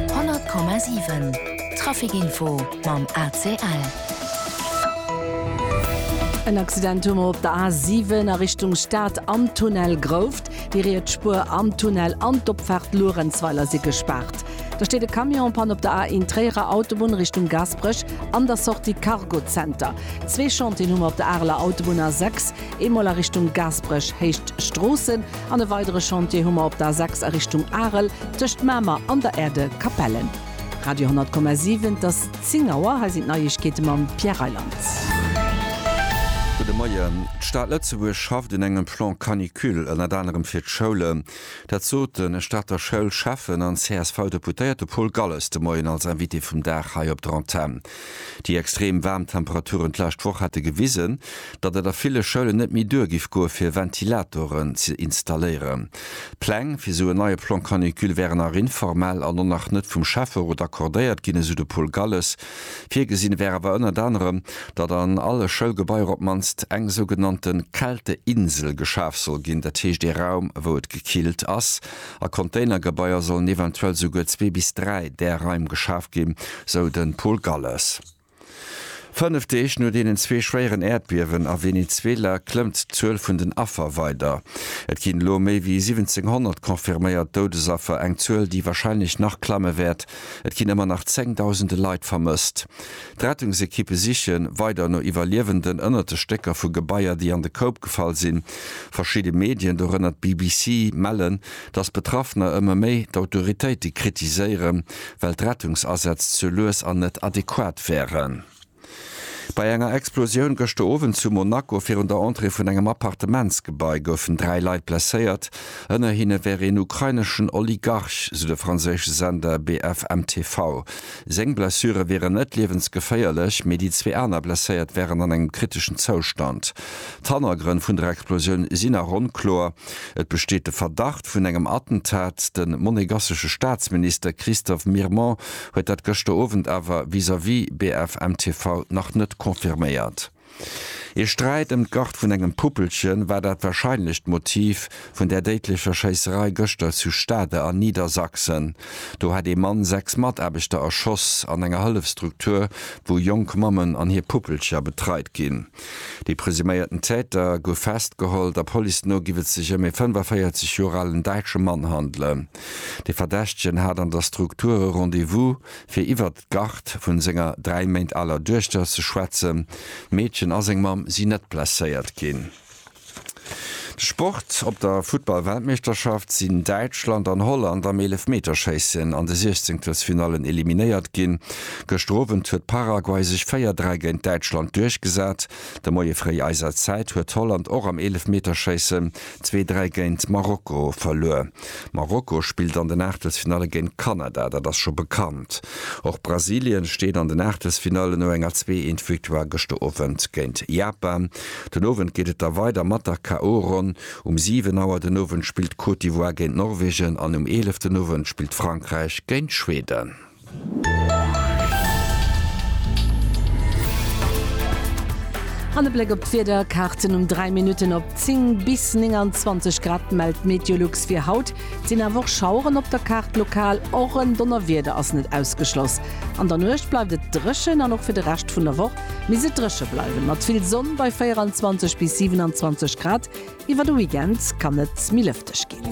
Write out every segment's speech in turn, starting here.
100,7 Trafic-Info mam ACL. En Accident hu mer op der A7 a Richtung Stad am Tunnel Grouft. Déi riets Spuer am Tunnel an d'Opfaart Luerenzweiler si gespaart. Da steet e Camion en Panne op der A1 Tréierer Autobunn Richtung Gaasperech an der Sortie Cargo Center. Zwee Chantieren hu mer op der Areler Autobunn A6, Eemol a Richtung Gaasperech héicht d'Stroossen an e weidere Chantier hu mer op der A6 a Richtung Arel tëscht Mamer an der Erde Capellen. Radio 10,7 Et ass 10 Auer, hei sinn d'Neiegkeete mam Pierre Reyland. Gudde Moien. D'Stad Lëtzebuerg schafft un engem Plan Canicule, ënnert anerem fir d'Schoulen. Dat sot de Stater Schoulschäffen an CSV-Deputéierte Paul Galles de Moien als Invité vum Dag hei op der Antenn. Déi extrem waarm Temperaturen d'lescht Woch hätte gewisen, datt et a ville Schoulen net méi duer giff goe fir Ventilatoren ze installéieren. D'Pläng fir esou en neie Plan Canicule wären nach informell an och nach net vum Schäfferot accordéiert ginn, esou de Paul Galles. Virgesinn wär awer ënnert anerem, datt an alle Schoulgebaier op d'mannst eng sougenannte Kälteinsel geschaf soll ginn, dat heescht ee Raum wou et gekillt ass, A Containergebaier sollen eventuell souguer zwee bis dräi där Raim geschaf ginn, sou de Paul Galles. Fënnef Deeg no deenen zwee schwéieren Äerdbiewen a Venezuela klëmmt d'Zuel vun den Affer weider. Et ginn elo méi wéi 1.700 confirméiert Doudesaffer, eng Zuel, déi warscheinlech nach klamme wäert. Et ginn ëmmer nach zéngdausende Leit vermësst. D'Rettungsekippe siche weider no Iwwerliewenden ënnert de Stécker vu Gebaier, déi an de Koup gefall sinn. Verschidde Medien, dorënner d'BBC, mellen, datt Betraffener ëmmer méi d'Autoritéite kritiséieren, well d'Rettungsasätz ze lues an net adequat wären. Bei enger Explosioun gëschter Owend zu Monaco virun der Entrée vun engem Appartementsgebai goufen dräi Leit blesséiert. Ënner hinne wär een ukraineschen Oligarch, sou de franséische Sender BFM TV. Seng Blessure wieren net liewensgeféierlech, mee déi zwee aner Blesséiert wären an engem kriteschen Zoustand. D'Hannergrënn vun der Explosioun sinn nach onkloer. Et besteet de Verdacht vun engem Attentat. De monegassesche Staatsminister Christophe Mirmont huet dat gëschter Owend awer vis-à-vis BFM TV nach net confirméiert. Ee Sträit ëm d'Gart vun engem Puppelchen war dat warscheinlecht Motiv vun där déidlecher Schéisserei gëschter zu Stade an Niedersachsen. Do hat ee Mann sechs Mataarbechter erschoss an enger Hëllefstruktur, wou jonk Mammen an hir Puppelcher betreit ginn. De presuméierten Täter gouf festgeholl. Der Police no giff et sech ëm ee 45 Joer alen däitsche Mann handelen. De Verdächtegen hat an der Struktur e Rendez-vous fir iwwert d'Garde vun senger dräi Méint aler Duechter ze schwätzen. D'Meedchen a seng Mamm sinn net blesséiert ginn. De Sport, Op der Futtball-Weltmeeschterschaft sinn Däitschland an Holland am Eelefmeterschéissen an de Siechzenkelsfinallen eliminéiert ginn. Gëschter Owend huet Paraguay sech 4, 3 géint Däitschland duerchgesat. De Moie fréi eiser Zäit huet Holland och am Eelefmeterschéissen zwee, dräi géint Marokko verluer. Marokko spillt an den Aachtelsfinalle géint Kanada, dat ass scho bekannt. Och Brasilien steet an den Aachtelsfinalle no enger zwee eent Victoire gëschter Owend géint Japan. Den Owend geet et da weider mat der KO-Ronn. Um 7 Auer den Owend spillt d'Côte d'Ivoire géint Norwegen an um 11 den Owend spillt Frankräich géint Schweden. An e Bléck op d'Wieder, Kaarten um 3 Minutten op 10 bis 29 Grad mellt d'Meteolux fir haut. Et sinn awer och Schaueren op der Kaart lokal, och en Donnerwieder ass net ausgeschloss. An der Nuecht bleift et dréchen an och fir de Rescht vun der Woch misst et dréche bleiwen, mat vill Sonn bei 24 bis 27 Grad. Iwwer de Weekend kann et méi lëfteg ginn.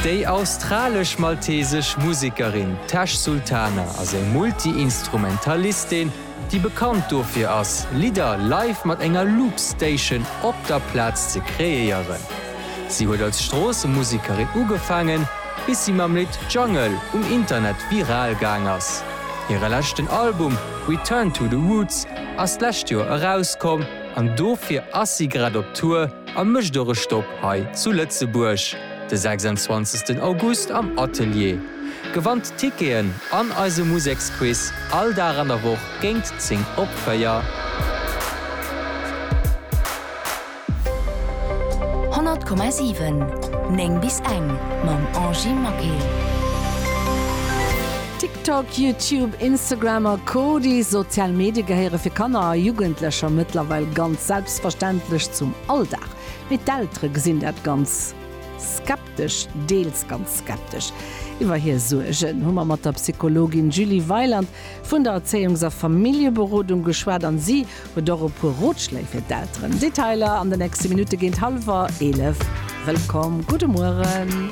Déi australesch-maltesesch Musekerin Tash Sultana ass eng Multi-Instrumentalistin, déi bekannt dofir ass, Lidder live mat enger Loop-Station op der Plaz ze kreéieren. Si huet als Stroossemusekerin ugefaangen, bis si mam Lidd Jungle um Internet viral gaang ass. Hire leschten Album Return to the Roots ass d'lescht Joer erauskomm an dofir ass si grad op Tour a mécht och e Stopp hei zu Lëtzebuerg de 26 August am Atelier. Gewannt Ticketen an eise Museksquiz all Dag an der Woch géingt 10 op 4. 100,7 9 bis eng mam Angie Maquet. TikTok, YouTube, Instagram a Co. Déi sozial Medie gehéiere fir Kanner a Jugendlecher mëttlerweil ganz selbstverständlech zum Alldag. Mee d'Eltere gesinn dat ganz skeptesch, deels ganz skeptesch. Iwwer hir Suergen hu mer mat der Psychologin Julie Weiland vun der Erzéiungs a Familljeberodung geschwat an si huet och e puer Rotschléi fir d'Elteren. Detailer an de nächste Minutte géint hallwer 11. Wëllkomm, gudde Mueren.